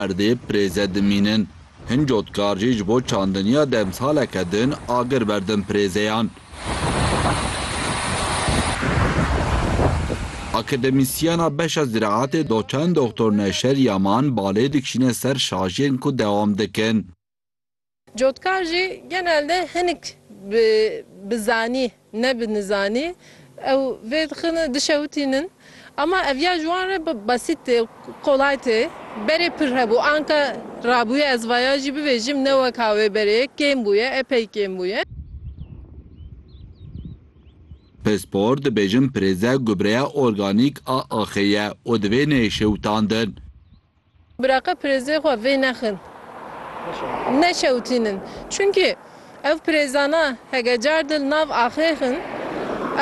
Erdê pirêze dimînin. Hin cotkar jî ji bo çandiniya demsaleke din agir berdin pirêzeyan. Akademîsyena beşa ziraetê doçent Doxtor Neşer Yaman balê dikişîne ser şajiyên ku dewam dikin. Cotkar jî genelde hinik bi bi zanî ne bi nizanî ew vê dixin dişewitînin ama ev ya ji wan re besît tê û kolay tê. Berê pir hebû anka rabûye ez vaya jî bibêjim ne weka wê berê ye kêm bûye epey kêm bûye. Pispor dibêjin pirêze gubreya organîk a axê ye û divê neyê şewitandin. Biraqe pirêzê xwe vê nexin. Neşewtînin. Çunkî ev pirêzana hege car di li nav axê xin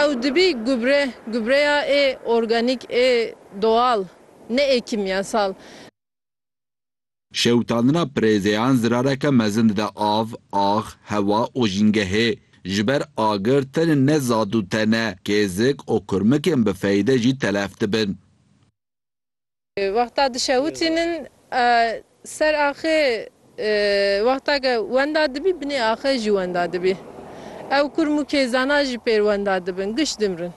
ew dibî gubre, gubreya ê organîk ê doal ne ê kîmyasal. Şewitandina pirêzeyan zirareke mezin dide av, ax, hewa û jîngehê. Ji ber agir tenê ne zad û tene, kêzik û kurmikên bi feyde jî telef dibin. Wexta dişewitînin ser axê wexta ke wenda dibî binê axê jî wenda dibî. Ew kurm û kêzana jî pêr wenda dibin, giş dimrin.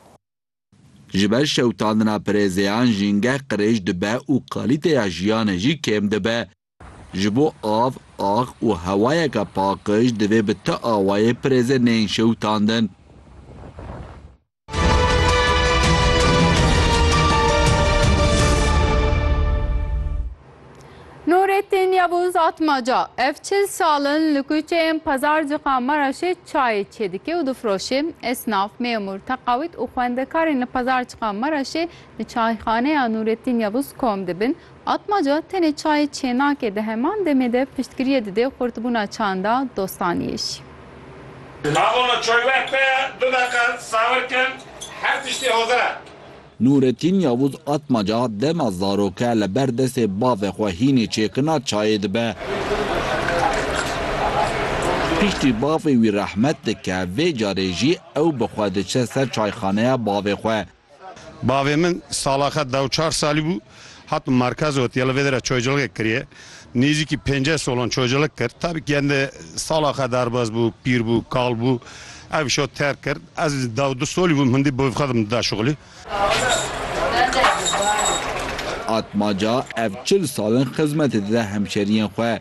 Ji ber şewitandina pirêzeyan jîngeh qirêj dibe û kalîteya jiyanê jî kêm dibe. Ji bo av, ax û hewayeke paqij divê bi ti awayê pirêzên neyên şewitandin. Nurettin Yavuz Atmaca, ev çil sal in li kuçeyên Pazarcika Maraşê çayê çêdike û difiroşê. Esnaf, mêmûr, teqawît û xwendekarên li Pazarcika Maraşê li çayxaneya Nurettin Yavuz kom dibin Atmaca tenê çayê Çênakê di heman demê de piştgiriyê didê xurtbûna çanda dostaniyê jî. Di navona Coyweh de du deqe sawir kin her tiştî hozir e. Nûretîn Yavûz Atmaca dema zaroke li ber destê bavê xwe hînê çêkina çayê dibe. Piştî bavê wî rehmet dike vê carê jî ew bi xwe diçe ser çayxaneya bavê xwe. Bavê min salaxe deh û çar salî bû, hat bi merkez û hetiye li vê derê çoculigek kiriye. Nêzîkî pênceh solan çoculig kir. Tabî ke hende salaxe derbas bû, pîr bû, kal bû. Ev îşo terk kir. Ez deh û du solî bûm, hindî bi xwe didim dida şixulî. Atmaca ev çil sal in xizmetê dide hemşeriyên xwe.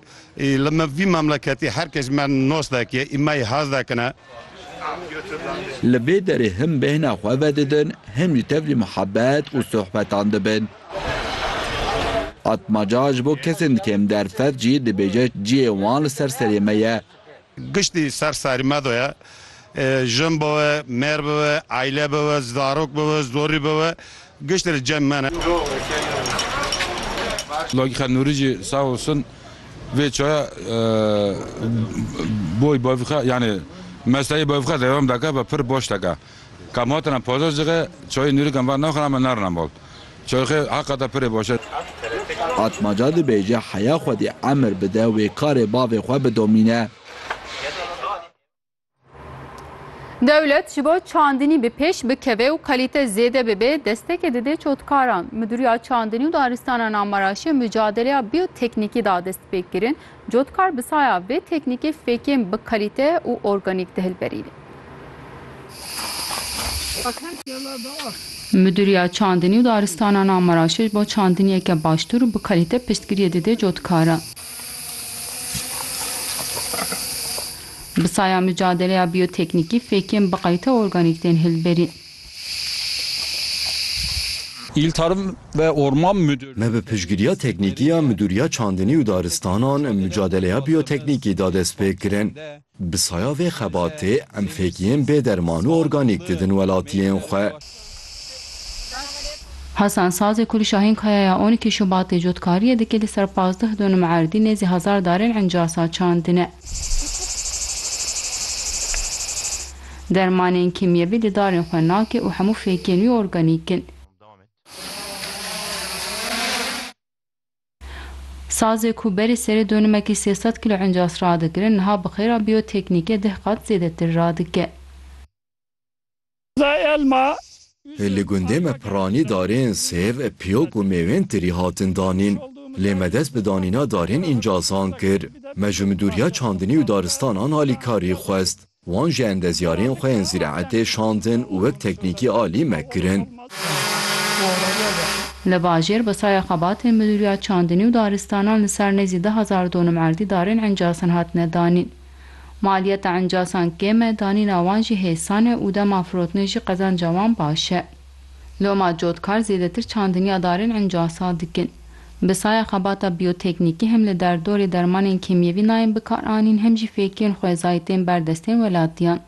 Li vî memleketê her kes me nos dike û me yê hez dikine. Li vê derê him bêhna xwe vedidin, him jî tevlî muhebet û sohbetan dibin. Atmaca ji bo kesên di kêm derfet jî dibêje cihê wan li ser serê me ye. Giştî ser serî me de ye. Jin bibe, mêr bibe, aîle bibe, zarok bibe, zorî bibe giştî li cem me ne. Lagîxa Nûrî jî sağ olsun vê çaya boy bavîxa yanî mesayê bavîxa devam dike ve pir baş dike. Ka ma tena paza cixê çayê nûrîkan va naxin ame narinan bal. Çayê xê heqa te pirê baş e. Atmaca dibêje heya xwedî emir bide wê karê bavê xwe bidomîne. Dewlet ji bo çandinî bi pêş bikeve û kalîte zêde bibe destekê dide çotkaran. Midûriya Çandinî û Daristana Namaraşê mucadeleya bîyoteknîkî da destpêkirin. Cotkar bi saya vê teknîkê fêkên bi kalîte û organîk dihilberîne. Midûriya Çandinî û Daristanan a Meraşeş bo çandiniyeke baştûr û bi kalîte piştgiriyê dide cotkaran. Bi saya micadeleya bîyoteknîkî fêkên bi kalîte û organîk tên hilberîn. Il Tarım ve Orman Müdürlüğü. Me bi piştgiriya teknîkî ya Midûriya Çandinî û Daristanan mucadeleya bîyoteknîkî da destpêkirin. Bi saya vê xebatê em fêkiyên bê derman û organîk didin welatiyên xwe. Hasan Sazê ku li Şahînkaya ya on îkî Şubatê cotkariyê dike li ser pazdeh donum erdî nêzî hezar darên encasa çandine. Dermanên kîmyevî li darên xwe nake û hemû fêkên wî organîk in. Sazê ku berî serê donimekî sê sed kîlo encas radikirin, niha bi xêra bîyoteknîkê deh qat zêdetir radike. Li gundê me piranî darên sêv, piyok û mêwên tirî hatin danîn. Lê me dest bi danîna darên encazan kir. Me ji midûriya çandinî û daristanan alîkarî xwest. Wan ji endezyarên xwe yên zîraetê şandin û wek teknîkî alî me kirin. Li bajêr bi saya xebatên Midûriya Çandinî û Daristanan li ser nêzî du hezar donum erdî darên encasan hatine danîn. Maliyeta encasan kêm e, danîna wan jî hêsan e û dema firotinê jî qezanca wan baş e. Loma cotkar zêdetir çandiniya darên encasa dikin. Bi saya xebata bîyoteknîkî hem li derdorê dermanên kêmyevî nayên bikaranîn hem jî fêkiyên xwezayî tên ber destên welatiyan.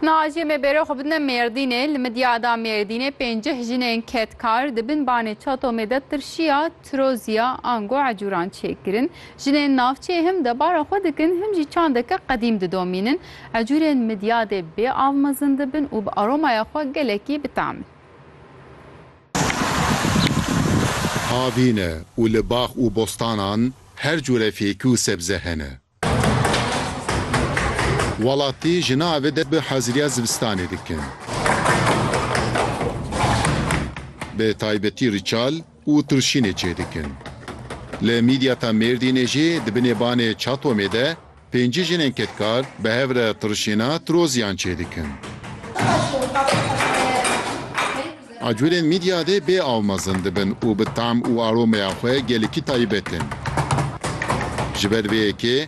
Nacî me bêre xwe bidine Mêrdînê, li Midyada Mêrdînê pênceh jinên kedkar di bin banê Çatomê de tirşiya tiroziya ango ecûran çêkirin. Jinên navçeyê hem debara xwe dikin hem jî çandeke qedîm didomînin. Ecûrên midyadê bê av mezin dibin û bi aromaya xwe gelekî bi tam in. Avîne û li bax û bostanan her cure fêkî û sebze hene. Welatî jina ev de bi haziriya zivistanê dikin. Bi taybetî riçal, û tirşînê çêdikin. Li Mîdyata Mêrdînê jî di binê banê Çatomê de pêncî jinên kedkar bi hev re tirşîna tiroziyan çêdikin. Acurên Mîdyadê bê aw mezin dibin û bi tam û aromeya xwe gelekî taybet in. Ji ber vê yekê,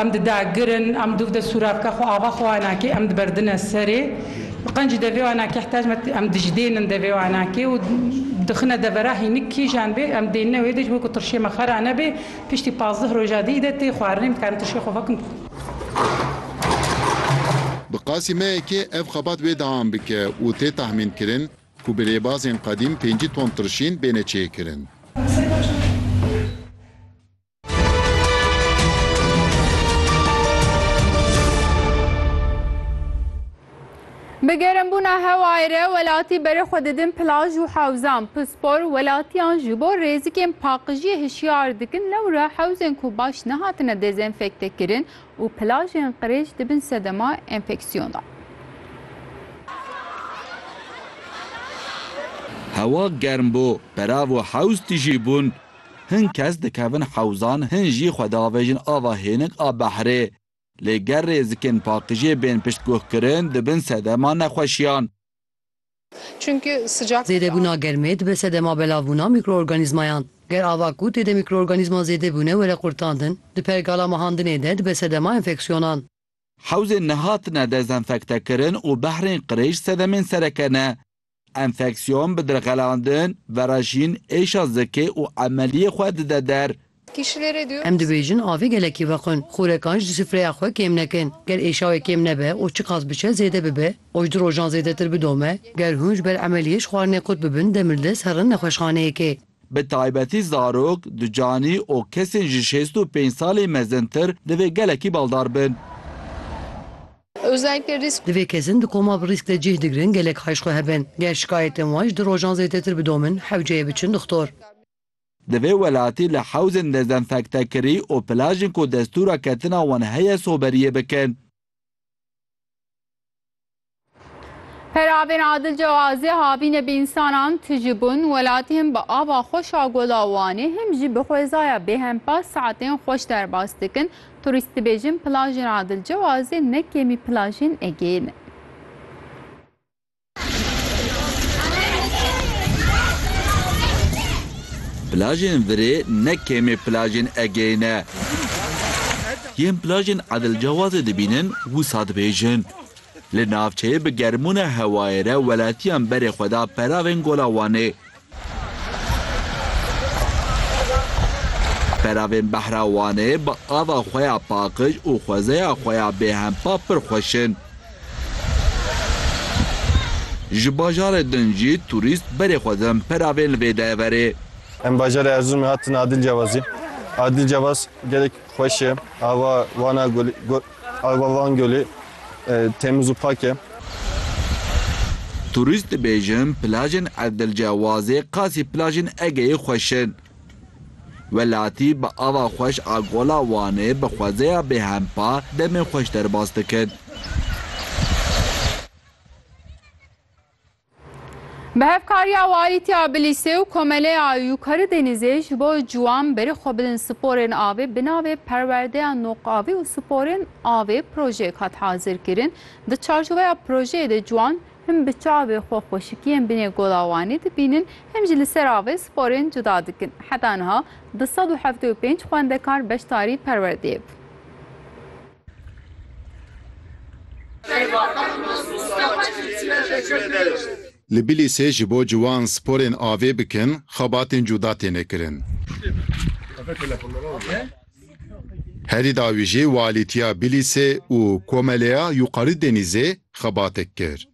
Em didagirin, em dûv de sûravka xwe ava xwe wana kê, em diberdine serê. Qencî devê wana keh tecme em dijdênin devê wana kê û dixine devera hînik kîjan bê em dênine wê dej wê ku tirşê me xera nebê. Piştî pazdeh roja dî de tê xwarinê em dikarin tirşê xwe vekin. Bi qasî me yekê ev xebat wê deam bike û tê tahmînkirin ku bi rêbazên qedîm pêncî ton tirşîn bêne çêkirin. Bi germbûna hewayê re welatî berê xwe didin plaj û hewzan. Pispor welatiyan ji bo rêzikên paqijiyê hişyar dikin lewra hewzên ku baş nehatine dezenfektekirin û plajên qirêj dibin sedema enfeksiyona. Hewa germ bû, perav û hewz tijî bûn Hin kes dikevin hewzan, hin jî xwe diavêjin ava hênik a behrê. Lê ger rêzikên pakijê bên piştguhkirin, dibin sedema nexweşiyan. Zêdebûna germê dibe sedema belavbûna mîkroorganîzmayan. Ger ava ku tê de mîkroorganîzma zêde bûne were qurtandin, di pergala mehandinê de dibe sedema enfeksyonan. Hewzên nehatine dezenfektekirin û behrên qirêj sedemên sereke ne. Enfeksiyon bi dirxelandin, verajîn, êşa zikê û emeliyê xwe dide der. Em dibêjin avê gelekî vequn. Xûrekan ji sufreya xwe kêm nekin. Ger êşa wê kêm nebe û çiqas biçe zêde bibe û ji du rojan zêdetir bidome, ger hûn ji ber emeliyê ji xwarinê qut bibin demildest herin nexweşxaneyekê. Bi taybetî zarok, ducanî û kesên ji şêst û pênc salên mezintir divê gelekî baldar bin. Divê kesên di koma bi rîsk de cih digirin gelek haj xwe hebin. Ger şikayetên wan ji du rojan zêdetir bidomin, hewceyê biçin dixtor. Divê welatî li hewzên dezenfektekirî û plajên ku destûra ketina wan heye soberiyê bikin. Peravên Adil Cewazê havînê bi însanan tijî bûn, welatî him bi ava xweş a Gola Wanê him jî bi xwezaya bêhempa saetên xweş derbas dikin. Turîst dibêjin plajên Adil Cewazê ne kêmî plajên Egeyê ne. Plajên Virê ne kêmî plajên Egeyê ne. Yên plajên Adil Cewazê dibînin wisa dibêjin Li navçeyê bi germbûna hewayê re welatiyan berê xwe da peravên Gola Wanê. Peravên Behra Wanê bi ava xwe ya paqij û xwezeya xwe ya bêhempa pir xweş in. Ji bajarê din jî turîst berê xwe din peravên li vê de verê. Em bajarê Erzurumê hatin Adil Cevazê. Adil Cevaz gelek xweş e. Ava Wana Ava Van Gölü temiz û pak e. Turîst dibêjin plajên Erdilcewazê qasî plajên Egeyê xweş in. Welatî bi ava xweş a Gola Wanê bi xwezeya bêhempa demê xweş derbas dikin. Bi hevkariya Walîtiya Bilîsê û Komeleya Yûkarî Denîzê ji bo ciwan berî xwe bidin sporên avê bi navê Perwerdeya Noq Avê û Sporên Avê projeyek hat hazirkirin. Di çarçoveya projeyê de ciwan him bi çavê xwe xweşikiyên binê Gola Wanê dibînin him jî li ser avê sporên cuda dikin. Heta niha du sed û hevdeh û pênc xwendekar beşdarî perwerdeyê bûn. Li Bilîsê ji bo ciwan sporên avê bikin xebatên cuda têne kirin. Herî dawî jî Walîtiya Bilîsê û Komeleya Yuqarî Denîzê xebatek kir.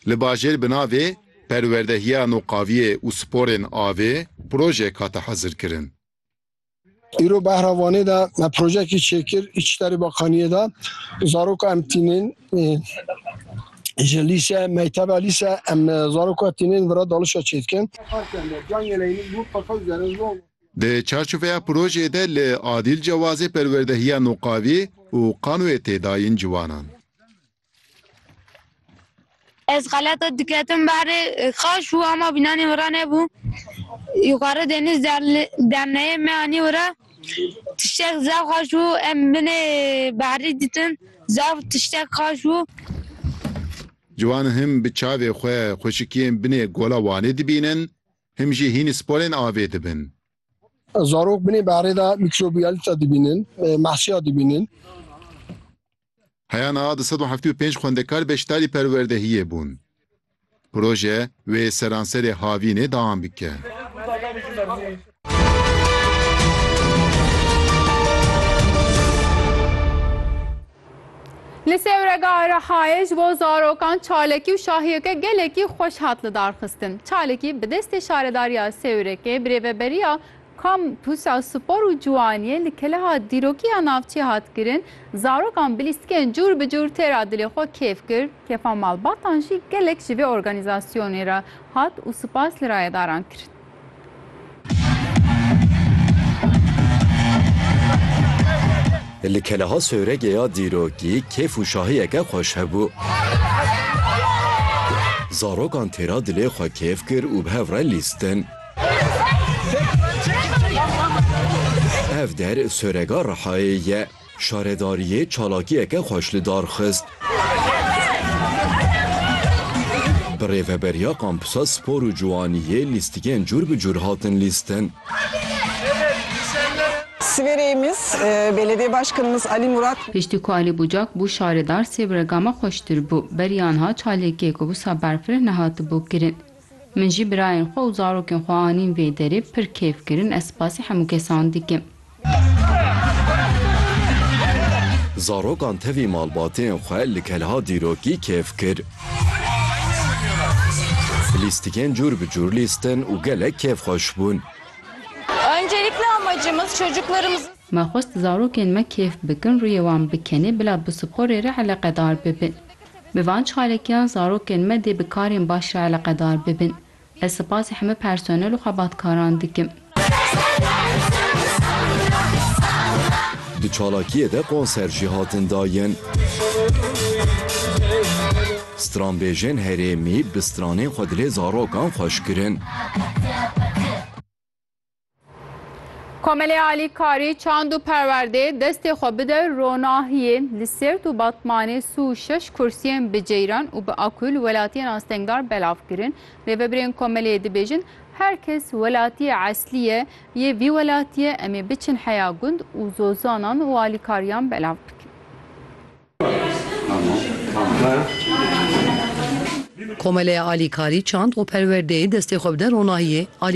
Li bajêr bi navê Perwerdehiya Noqaviyê û Sporên Avê projeyek hate hezirkirin. Îro behra Vanê de me projeyekî çêkir Îçterê Bakaniyê de zaroka em tînin ji lîse mekteba lîse em zaroka tînin vira dalişa çêdikin. Di çarçoveya projeyê de li Adîl Cewazê perwerdehiya Noqavî û Qanoyê tê dayîn ciwanan. Ez xeleta diketim berê xaş û ama bînanê wira nebû. Yukarı deniz derneğe me anî wira. Tiştek zaf xaş û em binê berî ditin. Zaf tiştek xaş û. Ciwan him bi çavê xwe xweşikiyên binê Gola Wanê dibînin, him jî hînî sporên avê dibin. Zarok binê berê de mîkrobiyalîta dibînin, mehsiya dibînin. Heya niha du sed û heftê û pênc xwendekar beşdarî perwerdehiyê bûn. Proje wê seranserê Havînê deam bike. Li Sêwrega Erehayê ji bo zarokan çalakî û şahiyeke gelekî xweş hat lidarxistin. Çalakî bi destê Şaredariya Sêwrekê bi rêveberiya Kampûsa Spor û Ciwaniyê li Keleha dîrokî ya navçî hat kirin, zarokan bi lîstikên cûr bi cûr tê ra dilê xwe kêf kir, kêfa malbatan jî gelek ji vê organîzasyonê re hat û spas li rayedaran kirin. Li Keleha Sowregê ya dîrokî kêf û şahiyeke xweş hebû. Zarokan tê ra dilê xwe kêf kir û bi hev re lîstin. Ev der Sorega Rihayê ye. Şaredariyê çalakiyeke xweş li dar xist. Bi rêveberiya Kampusa Spor û Ciwaniyê lîstikên cûr bi cûr hatin lîstin. Siverêyimiz, Belediye Başkanımız Ali Murat. Piştî ku Alî Bucak bû şaredar sê bi rega me xweştir bû. Beriyan hat çalakiyê ku wisa berfireh nehatibû kirin. Min jî birayên xwe û zarokên xwe anîn vê derê, pir keyf kirin, ez spasî hemû kesan dikim. Zarokan tevî malbatên xwe li kelha dîrokî keyf kir. Lîstikên cûr bi cûr lîstin û gelek kêfxweş bûn. Me xwest zarokên me keyf bikin, rûyê wan bikenê, bila bi sporê re eleqedar bibin. Bi van çarekiyan zarokên me dê bi karên baş re eleqedar bibin. Ez sipasê heme personel û xebatkaran dikim. Di çalakiyê de konser jî hatin dayin. Stranbêjên herêmî bi stranên xwe dilê zarokan xweş kirin. Komelê Alî Karî çand û perwerdê destê xwe bide ronahiyê li Sêrt û Batmanê sû şeş kursiyên bi ceyran û bi akû li welatiyên astengdar belav kirin. Rêvebirên komelê dibêjin her kes welatiyê eslî ye yê vî welatiye em ê biçin heya gund û zozanan û alîkariyan belav bikin. Komelê Alî Karî çand û perwerdê destê xwe bide ronahiyê Alî